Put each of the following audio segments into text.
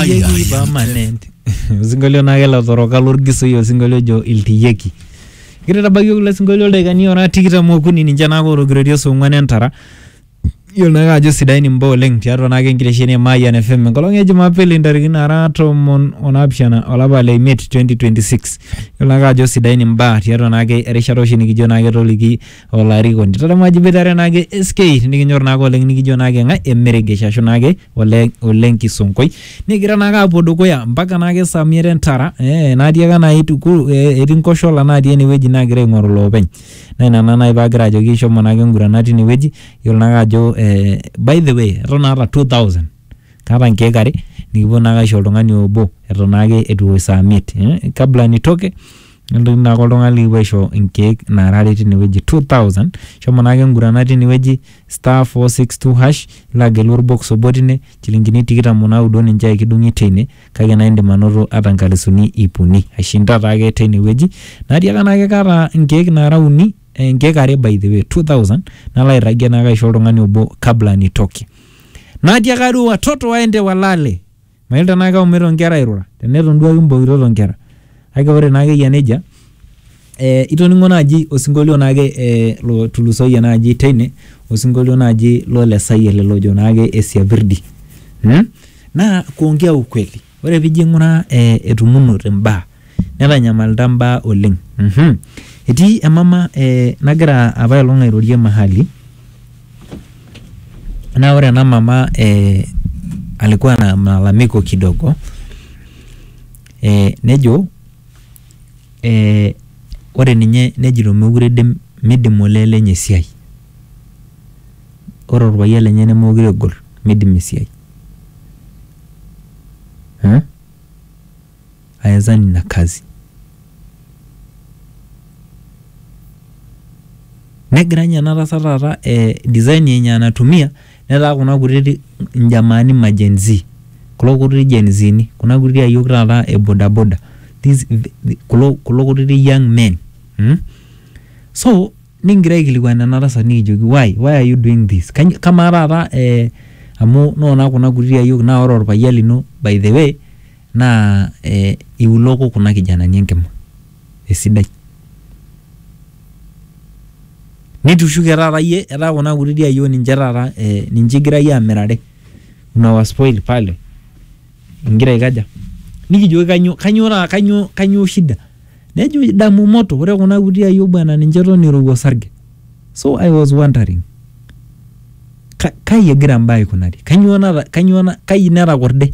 Yeyieki permanent. Osinkolio naa kelo toroka lorgisoi osinkolio ojo iltiyieki. Kigira aitabaiki kulo sinkolio ildaikani ora tikitam okuni ninche naa otogiroitie saa ong'wan entara. Iyiolo naake ajo sidain imbaa oleng tiatua naake enkitesheni e Mayian FM enkolong e Jumapili ntarikini naara tomon onaapishana olapa le imiet 2026. Iyiolo naake ajo sidain imbaa tiatua naake erishata oshi nikijo naake toliki olarikoni tadamu ajo iboitare naake SK nikinyor naake oleng nikijo naake ng'ae emeregesh ashu naake ole ole nkisonkoi nikigira naake apuo dukuya mpaka naake saa miet entara eh, naatiaka naai tukul eh, etii nkoshola natii enewueji naagira aing'oru loopeny naa ina naa naai paagira ajoki shomo naake ingurana tinewueji yiolo naake ajo eh, by the way eton aata 2000 kaata nkeek are nikipuo naake aisho oltung'ani obo eton naake etu ewosh saa miet eh, kabla nitoke nelotu naake oltung'ani likipuo aisho inkeek naara are tinewueji 2000 shomo naake ngurana tinewueji star 462 hash nilo agelu orbox obo tine chilingini tikitam onaudo ninche aikidung'i teine kake naa indim anoto ata nkalisuni ip uni aishinda taake teinewueji natiaka naake kaata inkeek naara uni eh, inkeek are by the way 2000 nalo airragie naake aisho oltung'ani obo kabla nitoki natiaka duo watoto waende walale Mayiolo tenaa keumita onkera airura, teneton duo ake imbokitot onkera. Kake ore naake eyia nejia, eh itoning'o naaji osinkolio naake eh lotulusoyie naaji teine, osinkolio naaji lole Sayiet ele ojo naake Esiapirdi mmh, naa kuongea ukweli. Ore piijo aing'uraa eh etumunote imbaa. Netanyamalita mbaa oleng. Uhum. Etii emama ee nagira apailong airorie mahali naa ore ena mama ee alikuwa na malalamiko kidogo ee nejo ee ore ninye nejito meekure eidim meidim olee lenye esiai. Ore olpayian lenye nemeekure egol meidim esiai. Hum ayazani na kazi. Negira ninye ena tasat taata eh, design yenye anatumia netaa kuna kutiti njamaani ma Gen Z kulo kutiti Gen Zini kuna kutiti ayiok taata e bodaboda these the- kulo, kulo kutiti young men mm? so nikingira aikilikuan ena tasat nikijoki why, why are you doing this Kany- kamaa taata eh, amu noona kuna kutiti ayiok naa ore orpayian lino by the way Naa iuloko kuna kijanani enkima esidai. Nitushuke taata iyie etaa kuna kutiti ayiok ninche taata ninche igira iyie amirare unawa spoil pale ingira aikaja? Nikijoki kanyoo kanyoo taata kanyoo kanyoo shida? Nejo idamu moto ore kuna kuti ayiok bwana ninche eton irowua osarge. So I was wondering kai egira imbaa aikunari? Kanyoo nata kanyoo kai netakorde?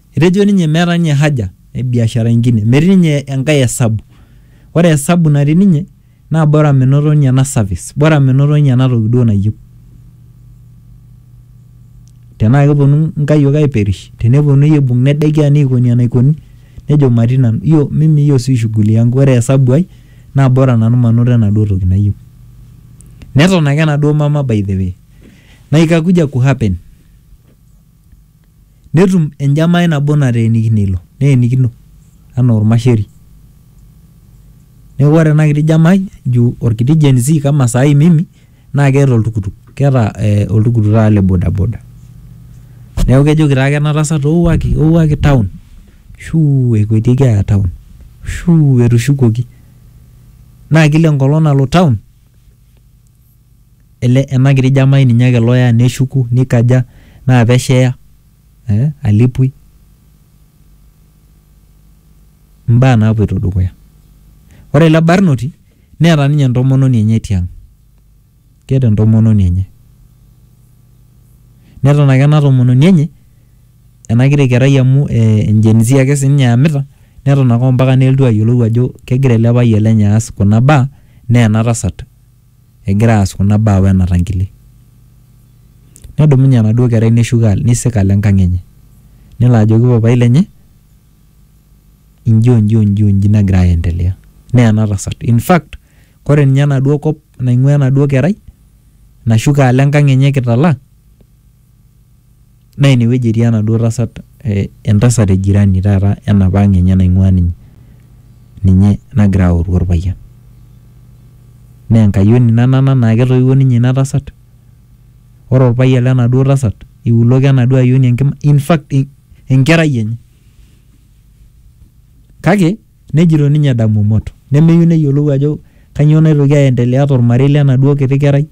Etejo ninye meeta ninye haja e biashara ingine, metii ninye enkae esabu. Ore esabu natii ninye naa bora menoto ninye ena service, bora menoto ninye ena toki duo nayieu. Tenaa keponu nkayiok aiperish, teneponunui aibung nedekia neikoni enaikoni nejo matii nanu. Hiyo mimi hiyo si shughuli yangu. Ore esabu ai naa bora nanu manoto enaduo toki nayieu. Neton ake enaduo mama by the way. Na ikakuja ku happen. netum enjamai nabo nateenikine ilo, neenikino anaa olmasheri. Neaku ore ena kiti jamai juu olkiti Gen z kama sai mimi naa keeta oltukutuk, keeta oltukutuk taata le bodaboda. Neaku kejoki taake ena tasat ouaki, ouaki taun, shuu ekuetieki aaya taun, shuu etushukuoki. Naa kila enkolong nalo taun. ele ena kiti jamai ninye ake loya neshuku nikaja naa pesho eya eh alepui imbaa napuoito dukuya ore ele barnoti neeta ninye entomononi enye tiang keeta entomononi enye neton ake ena tomononi enye ena kiti kerai amu eh engen z ake sininye eyamita neton ake ompaka nelotu ayiolou ajo kegira ele payian lenye aas kuna baa naa ena tasat. egira aas kuna baa wena tankile. Nedumunye enaduo kerai neshuko neisik alo enkang enye. Nelo ajoki papai lenye inji onji onji onji nagira aendelea. Naa ena tasat. In fact, ore ninye enaduo kop naing'ua enaduo kerai nashuko alo enkang enye kitala Naa ine wueji etii enaduo tasat eh, entasat e jirani taata enapa ang enye naing'ua ninye, ninye nagira aoru orpayian. Naa enkayioni ina nana naa ketoiwuo ninye ina tasat. Ore orpayian lenaduo tasat iuloko enaduo ayioni enkima, infact enkerai enye. Kake Nejito ninye Damumot nemeyieu neyiolou ajo kanyoo naitoki aendelea tolmarei lenaduo kiti kerai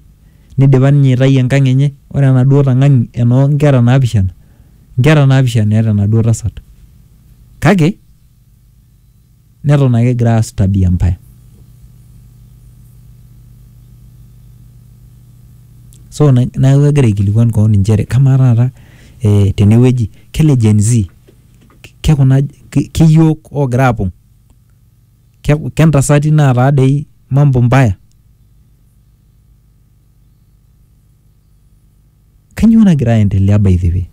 neidipa ninye aitayu enkang enye. Ore enaduo tang'ani enoo nkera naapishana, nkera naapishana eeta enaduo tasat kake neton ake egira aas tabia mbaya. So neaku egira aikilikuan kewon inchere kamaa taata tenewueji kele Gen-z. ke kuna ke iyiook oogira aapong, ke ke ntasati naataa dei mambo mbaya. Kainyoo nagira aendelea by the way?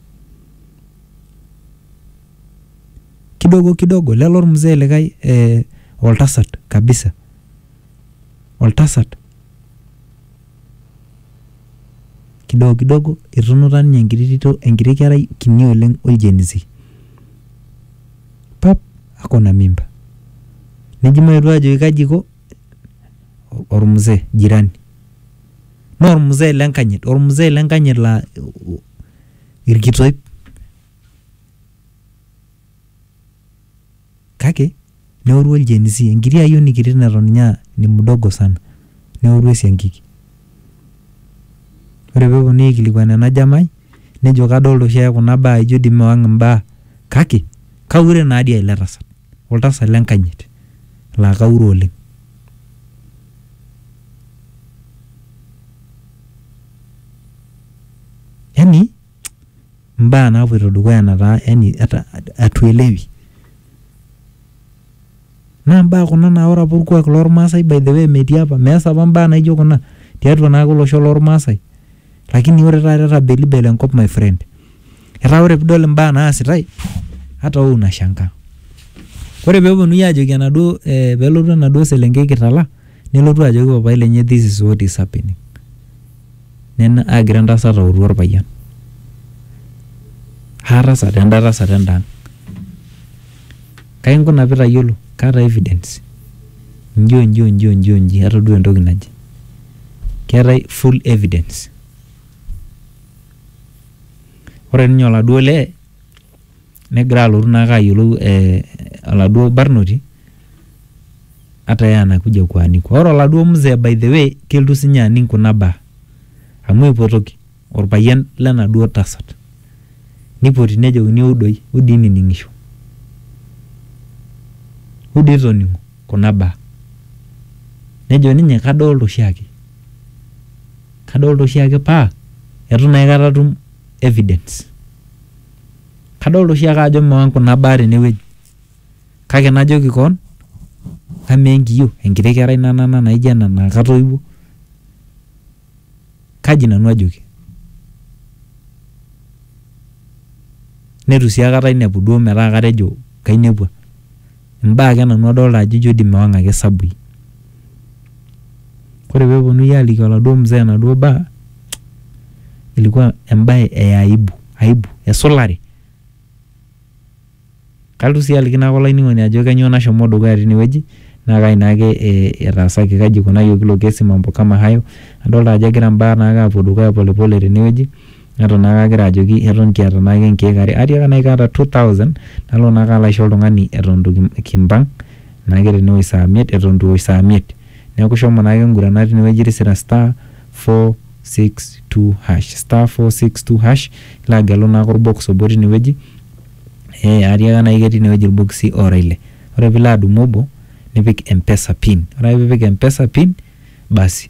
Kidogo kidogo lele olmzee likae ee oltasat kabisa, oltasat. kidogo kidogo etunuta ninye enkiti tito enkiti kerai kini oleng oljenzi pap akona mimba neji maetu ajoki kaji iko ormzee jirani naa ormzee lenkanyit ormzee lenkanyit laa irkitoip. Kake neoru oljenisi, enkiti ayioni kiti neton ninye aa ni mdogo sana, neoru esiankiki. Ore pee epuonunui aikilikuan ena jamai nejo kadolita oshi ake kuna baa ijo dii mewang imbaa kake kaure naa dii ele tasat, oltasat le nkanyit laa kaure oleng. Yani mbaa naapoito dukuya nataa yani atuelewi. Naa mbaa kuna naa ore apa olkuak lolmaasai by the way metii apa, meas apa mbaa naijo kuna tiatua naake olosho lolmaasai lakini ore taata etabelibele enkop my friend. Etaa ore piidol imbaa naasitai hata wewe unashangaa. Ore peepuonuni aajoki enaduo peelotu enaduo selenkei kitala nelotu ajoki papai lenye this is what is happening. Nena aagira entasat autu olpayian. Haa tasat enda tasat enda ang'. Kai inkuna pee itayiolo? Kaata evidence. Inji o nji o nji o nji o nji atodua entoki naje. Keetae full evidence. Ore ninye oladuo lee negira alotu naake ayiolou eh, oladuo barnoti ata yeye anakuja kuaniko. Ore oladuo mzee by the way keltu sinye aning kuna baa amu eipotoki orpayian lenaduo tasat neipoti nejokini ewou doi, wou dii nining'isho, wou dii toning'o kuna baa. Nejo ninye kadolta oshiake, kadolta oshiake paa etu naa aikata atum evidence. Kadolita oshi ake ajo meon kuna baa tene wueji kake najoki koon amaa enkiyio enkiti kerai nanana naijo ena naa katoiwuo kaji nanu ajoki? Neitu sii aikata ainepu duo metaa katejo kainepua. Imbaa ake nanu adolta ajo ijo dii mewang ake sabui. Ore peponunui aliki oladuo mzee enaduo baa, ilikuwa embae e aibu, aibu esulare. Kalotu sii aliki naake olainining'oni ajo kanyoo nashomo dukuya tinewueji naa kai naake etaasaki, kaji ikunayioki ilo kesi mambo kama hayo. Adolta ajo egira mbaa naake apuo dukuya pole pole tinewueji. neton naake agira ajoki eton kiata naake nkeek are, atiaka naai kaata two thousand nalo naake alo aisho oltung'ani eton itu kim- kimpang' naake tene wuei saa miet eton itu ewosh saa miet. Neeku shomo naake ing'urana tine wueji tisira star four six two hash, star four six two hash, nilo agelu naake orbox obo tine wueji ee atiaka naai ketii ine wueji irbokisi oora ile. Ore piilo adumu obo nipik mpesa pin, ore ake piipik mpesa pin basi.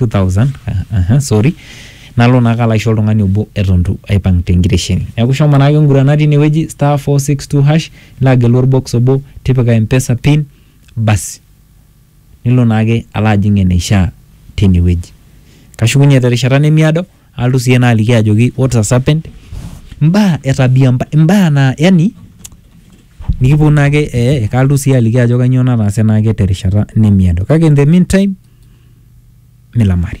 2000 aha, sorry nalo naa kalo aisho oltung'ani obo eton itu aipang tenkitesheni neeku shomo naake ngurana tinewueji star 462 hash nilo agelu orbox obo tipika mpesa pin basi nilo naake alo ajing eneishaa tinewueji kashukunye terishata nemiado alotu siyie naaliki ajoki what has happened imbaa e tabia mba- imbaa naa yani nikiponu naake ee kalotu siyie aliki ajo kanyoo nataase naake terishata nemiado kake in the meantime milamari